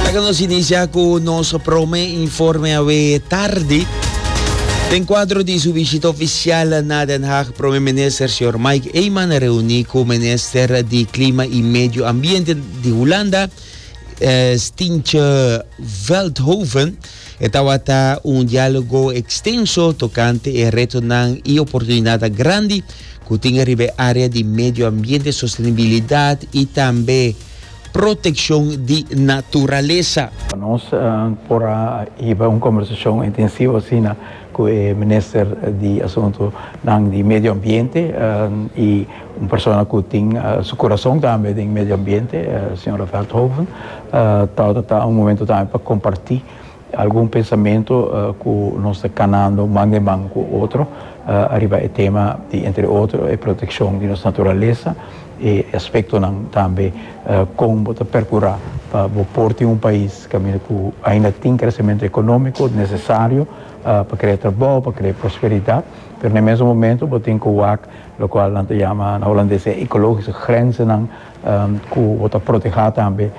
Laga nos inicia cu nos prome informe awe tardi. Den cuadro di su visita oficial na Den Haag, prome minister señor Mike Eman reuni cu minister di Clima y Medio Ambiente di Hulanda, eh, Stintje Veldhoven, E tabata un dialogo extenso tocante e retonan y oportunidadnan grandi cu tin riba e area di medio ambiente, sostenibilidad y tambe proteccion di naturaleza. Nos por a hiba un conversacion intensivo asina cu e Minister di Asuntonan di Medio Ambiente y Un persona cu tin su corazon tambe den medio ambiente, señora Veldhoven, tawata ta un momento tambe pa comparti algun pensamento cu nos ta canando man den man cu otro ariba e tema di entre otro e proteccion di nos naturalesa, e aspectonan tambe con bo ta percura pa bo por tin un pais caminda cu ainda tin crecemento economico necesario pa crea trabao, pa crea prosperidad, pero na e mesun momento bo tin cu wak. Locual nan ta yama na Holandes e ecologische grenzennan cu bo ta proteha tambe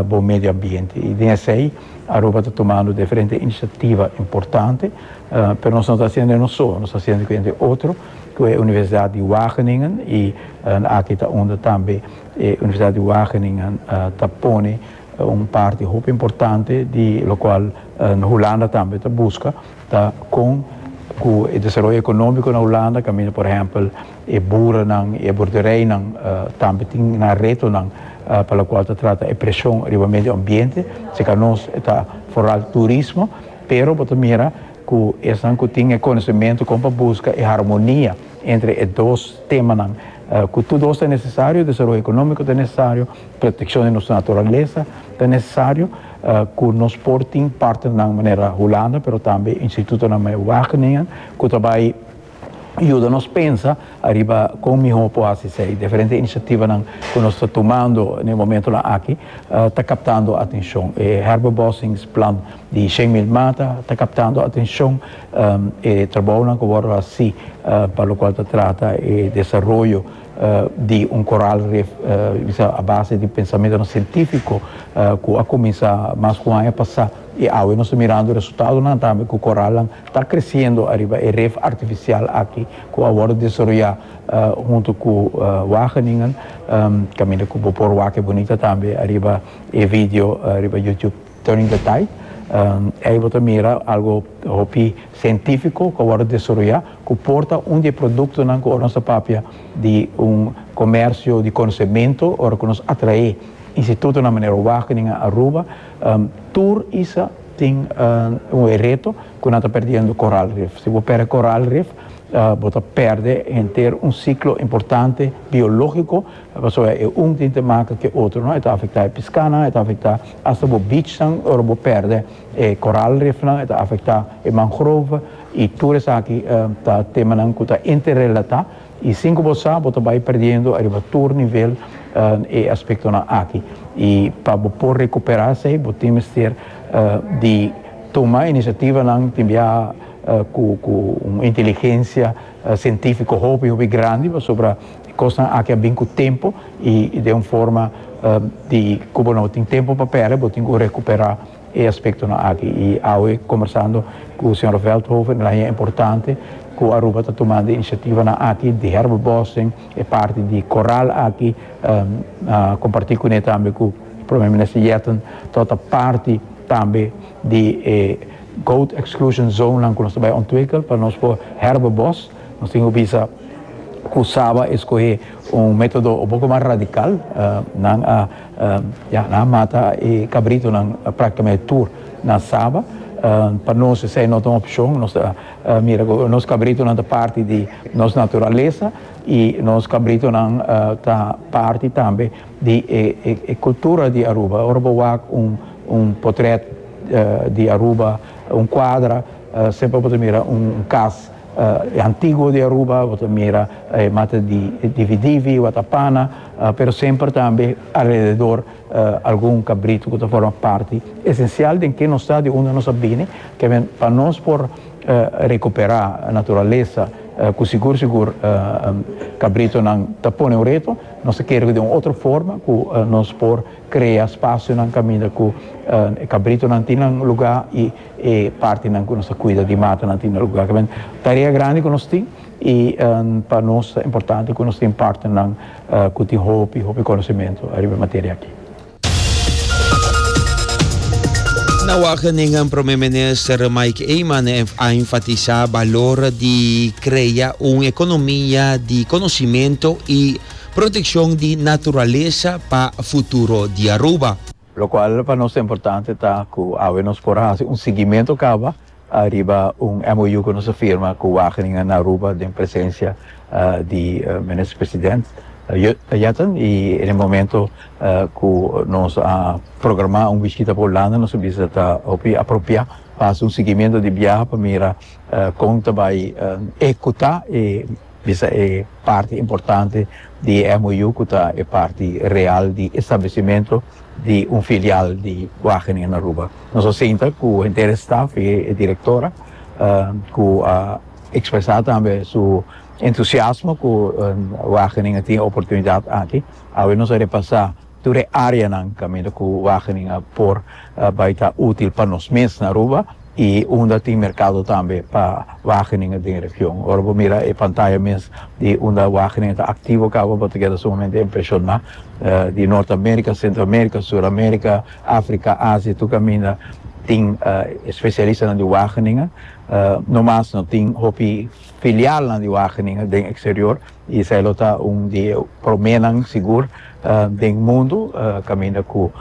bo medioambiente. Y den esey Aruba ta tumando diferente iniciativa importante. Pero nos no ta haciendo e nos soe, nos ta haciendo cu hende otro, cu e Universidad di Wageningen, y aki ta unda tambe e Universidad di Wageningen ta pone un parti hopi importante di locual Hulanda tambe ta busca. ta kon ku e desaroyo ekonómiko na Hulanda kaminda. Por ehèmpel, e buranan i e bordereinan tambe tin nan retonan pa lokual ta trata e preshon riba medio ambiente. Serka nos ta foral turismo, pero bo ta mira ku esnan ku tin e konosementu kon pa buska e harmonia entre e dos temanan ku tur dos ta nesesario, desaroyo ekonómiko ta nesesario, protekshon di nos naturalesa ta nesesario. ku nos por tin partnernan manera Hulanda pero tambe institutonan manera Wageningen ku ta bai yuda nos pensa ariba kon mihó por hasi esei. Diferente inisiativanan ku nos ta tumando na e momentunan aki ta kaptando atenshon. E herbobossingsplan di shen mil mata ta kaptando atenshon. E trabounan ku wòrdu hasi pa lokual ta trata e desaroyo. di un koral ref bisa a base di pensamentonan sientífiko ku a kuminsá mas ku un aña pasá i awe nos ta mirando resultadonan tambe ku koralnan ta kresiendo ariba e ref artifisial aki ku a wòrdu desaroyá huntu ku Wageningen kaminda ku bo por wak e bunita tambe ariba e video riba YouTube. During the day, ei bo ta mira algo hopi cientifico cu a wordo desaroya cu por ta un di e productonan cu ora nos ta papia di un comercio di conocemento ora cu nos atrae institutonan manera Wageningen en Aruba, tur isa tin e reto cu nan ta perdiendo coral reef. Si bo perde coral reef bo ta perde henter un ciclo importante biologico. Pasobra e un tin te maka ku e otro no e ta afektá e piskanan e ta afektá asta bo bichnan ora bo pèrdè e koral rifnan e ta afektá e mangrove i tur esaki ta temanan ku ta interrelatá i sin ku bo sa bo ta bai perdiendo ariba tur nivel e aspektonan aki i pa bo por rekuperá esei bo tin mester di tuma inisiativanan tin bia ku un inteligensia sientífiko hopi hopi grandi pasobra Cosnan aki a bin cu tempo y den un forma di cu bo no tin tempo pa perde bo tin cu recupera e aspectonan aki. Y awe conversando cu Sra. Veldhoven el a haña importante cu Aruba ta tumando e iniciativanan aki di herbebossing, e parti di coral aki a comparti cune tambe cu Prome Minister Yetten tot a parti tambe di e goat exclusion zonenan cu nos ta bay ontwikkel pa nos por herbebos. Nos tin ku bisa ku Saba e skohe un metodo un poko mas radikal. Nan a ya, nan a mata e kabritonan praktikamenti tur na Saba. Pa nos esei no ta un opshon. Nos ta mira ku nos kabritonan ta parti di nos naturalesa i nos kabritonan ta parti tambe di e kultura di Aruba. Ora bo wak un potrèt di Aruba, un kuadra, semper bo ta mira un kas. E antiguo di Aruba bo ta mira e mata di dividivi, watapana, pero semper tambe alrededor algun kabritu ku ta forma parti esensial den ke nos ta, di unda nos a bini, kende pa nos por rekuperá naturalesa ku sigur sigur kabritunan ta pone un reto, nos ta kere ku den un otro forma ku nos por krea spasionan kaminda ku e kabritunan tin nan lugá i. E partinan ku nos ta kuida di matanan tin algun laka. Kibè tarea grandi ku nos tin i pa nos ta importante ku nos tin partinan ku tin hopi hopi konosementu ariba e materia aki. Na Wageningen Prome Minister Mike Eman a enfatisá balor di krea un ekonomia di konosimentu i protekshon di naturalesa pa futuro di Aruba. Locual pa nos ta importante ta cu awe nos por haci un siguiemento caba ariba un MOU cu nos a firma cu Wageningen na Aruba den presencia di Minister President Jetten y en e momento cu nos a programa un bishita pa Hulanda nos a bisa ta hopi apropia pa haci un siguiemento di biaha pa mira con ta bay ecuta e Bisa e parti importante di e MOU cu ta e parti real di establecimento di un filial di Wageningen na Aruba. Nos a sinta cu henter e staf y e directora cu a expresa tambe su entusiasmo cu Wageningen tin e oportunidad aki. Awe nos a repasa. Tur e áreanan kaminda ku Wageningen a por bai ta útil pa nos mes na Aruba i unda tin merkado tambe pa Wageningen den e region. Ora bo mira e pantaya mes di unda Wageningen ta aktivo kaba bo ta keda sumamente impreshoná di Nort Amérika, Sentro Amérika, Sur Amérika, Afrika, Asia tur kaminda tin e spesialistanan di Wageningen. No mas no tin hopi filialnan di Wageningen den eksterior. Israel lo ta un di e proménan sigur den mundu kaminda ku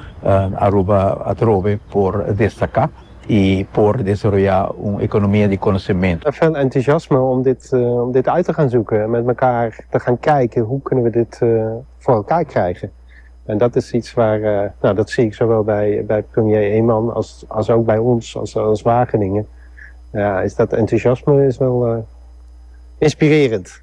Aruba atrobe por destaká i por desaroyá un ekonomia di konosementu. Fen entusiasme om dit uit te gaan zoeken en met mekaar te gaan kijken hoe kunnen we dit voor elkaar krijgen. En dat is iets waar, nou, dat zie ik zowel bij premier Eman als ook bij ons als Wageningen, ja, is dat entusiasme is wel inspirerend.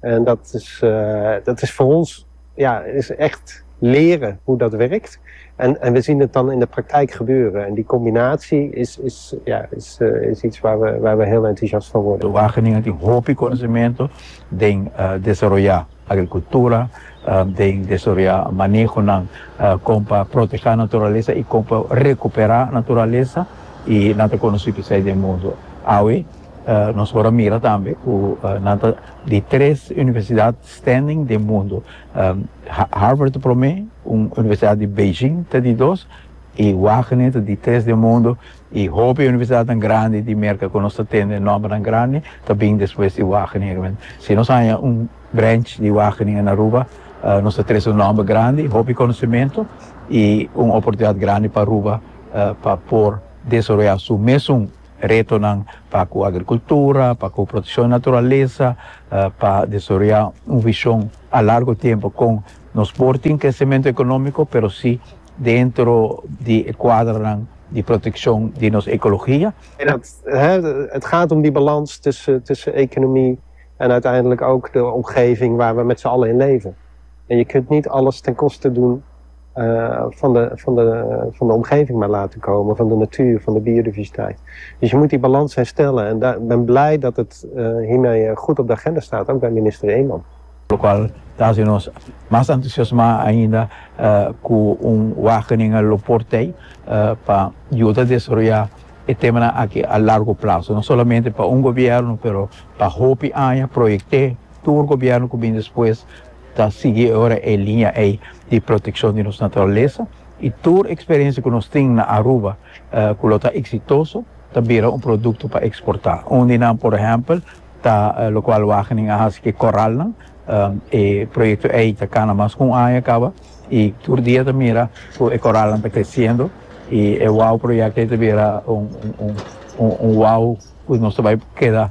En dat is, dat is voor ons, ja, is echt leren hoe dat werkt. En, en we zien het dan in de praktijk gebeuren. En die combinatie is, is, ja, is, is iets waar we, waar we heel enthousiast van worden. Wageningen tin hopi conocemento den desaroya agricultura, den desaroya manehonan con pa protehá naturalesa y con pa recupera naturalesa y nan ta conoci pesai den mundo. Awe. Nos por a mira tambe ku nan ta di tres universidat standing den mundu. Harvard ta promé, un universidat di Beijing ta di dos i Wagene ta di tres den mundu i hopi universidatnan grandi di Merka ku nos ta tende nòmbernan grandi ta bin despues di Wageningen. Si nos haña un branch di Wageningen na Aruba nos ta trese un nòmber grandi, hopi konosementu i un oportunidat grandi pa Aruba pa por desaroyá su mesun Retonan pa ku agrikultura, pa ku protekshon di naturalesa, pa desaroyá un vishon a largu tiempu kon nos por tin kresementu ekonómiko pero si dentro di e kuadronan di protekshon di nos ekologia. Het gaat om die balans tussen economie en uiteindelijk ook de omgeving waar we met z'n allen in leven. En je kunt niet alles ten koste doen. van de van de van de omgeving maar laten komen, van de natuur, van de biodiversiteit. Dus je moet die balans herstellen en da ben blij dat het hiermee goed op de agenda staat, ook bij minister Eman. Locual ta haci nos mas entusiasma ainda cu un wagening a lo por tey pa yuda desaroya e temanan aki a largo plazo, no solamente pa un gobierno pero pa hopi aña, proyecte tur gobierno cu bin despues. Ta sigui awor e liña ei di protekshon di nos naturalesa i tur eksperensia ku nos tin na Aruba ku lo ta eksitoso ta bira un produkto pa eksportá. Un di nan, por ehèmpel, ta lokual Wageningen a hasi ku e koralnan. E proyekto ei ta kana mas ku un aña kaba i tur dia ta mira ku e koralnan ta kresiendo i e wow proyekto ei ta bira un wow ku nos ta bai keda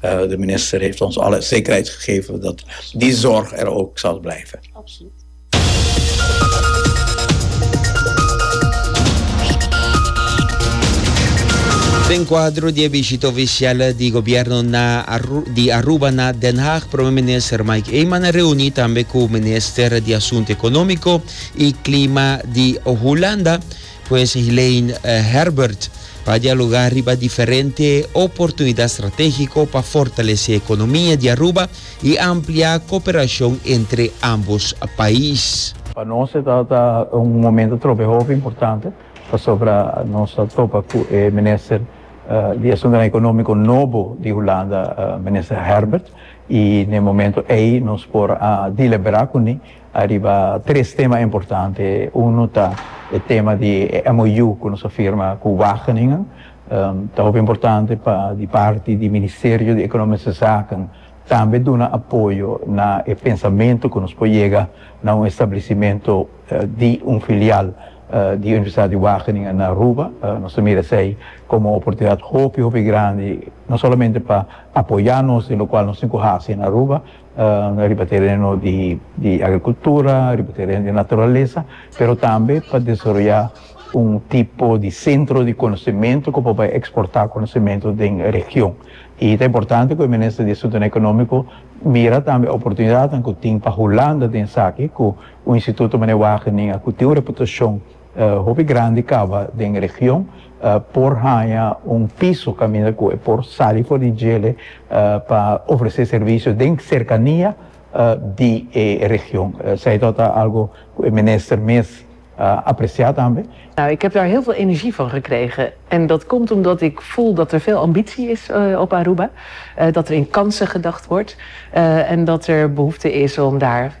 De minister heeft ons alle zekerheid gegeven dat die zorg er ook zal blijven. Den kuadro di e bishita ofisial di gobièrnu na di Aruba na Den Haag prome minister Mike Eman a reuní tambe ku minister di asuntu ekonómiko i klima di Hulanda, Pues Helaine Herbert pa dialoga riba diferente oportunidat stratégiko pa fortalesé ekonomia di Aruba i ampliá koperashon entre ámbos pais. Pa nos e ta ta un momento trobe hopi importante pasobra nos a topa ku e minister di Asuntunan Ekonómiko nobo di Hulanda, Minister Herbert, i n'e momento ei nos por a deliberá kuné. Ariba tres tema importante, uno ta e tema di e MOU cu nos a firma cu Wageningen. Ta hopi importante pa di parti di Ministerio di Economische Zaken tambe duna apoyo na e pensamento cu nos por yega na un establecimento di un filial di Universidad di Wageningen na Aruba. Nos ta mira esey como un oportunidad hopi hopi grandi no solamente pa apoya nos den locual nos tin cu haci na Aruba, riba tereno di agrikultura, riba tereno di naturalesa, pero tambe pa desaroyá un tipo di sentro di konosementu ku por bai eksportá konosementu den e region. I ta importante ku e minister di Asuntonan Ekonómiko mira tambe oportunidatnan ku tin pa Hulanda den esaki ku un instituto manera Wageningen ku tin un reputashon. Hopi grandi kaba den e region por haña un piso kaminda ku e por sali for di djele pa ofresé servisio den serkania di e region. Esei tok ta algu ku e minister mes a apresiá tambe. Ik heb daar heel veel energie van gekregen. En dat komt omdat ik voel dat er veel ambitie is op Aruba, dat er in kansen gedacht wordt en dat er behoefte is om daar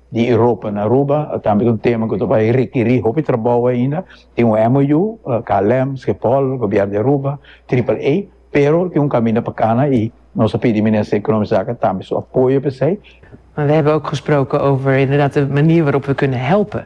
di Europa na Aruba a tambe ta un tema ku ta bai rekerí hopi trabou ainda. Tin un MOU, KLM, Schiphol, Gobièrnu di Aruba, Triple A, pero tin un kaminda pa kana i nos a pidi Minister di Ekonòmika Zaken tambe su apoyo pa esei. We hebben ook gesproken over inderdaad de manier waarop we kunnen helpen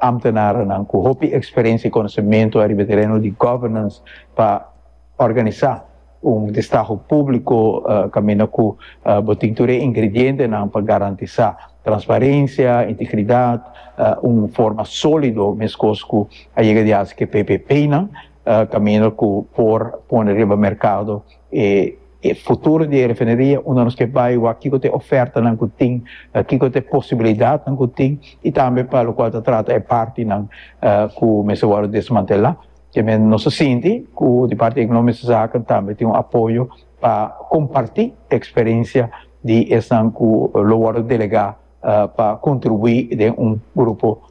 Amtenaranan cu hopi experiencia y conocemento ariba e tereno di governance pa organisa un destaho publico caminda cu bo tin tur e ingredientenan pa garantisa transparencia, integridad, un forma solido mescos cu a yega di haci cu e PPPnan caminda cu por pone riba mercado e E futuro di e refineria unda nos ke bai wak kiko ta e ofertanan ku tin, kiko ta e posibilidatnan ku tin i tambe pa lokual ta trata e partinan ku mester wòrdu desmantelá. Te nos ta sinti ku di parti di Ekonòmiese Zaken tambe tin un apoyo pa kompartí eksperensia di esnan ku lo wòrdu delegá pa kontribuí den un grupo.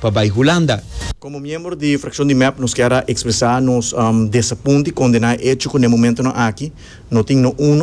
pa bai Hulanda. Komo miembro di frakshon di mep nos kier a ekspresá nos desapunto i kondená e echo ku n'e momentonan aki no tin no uno.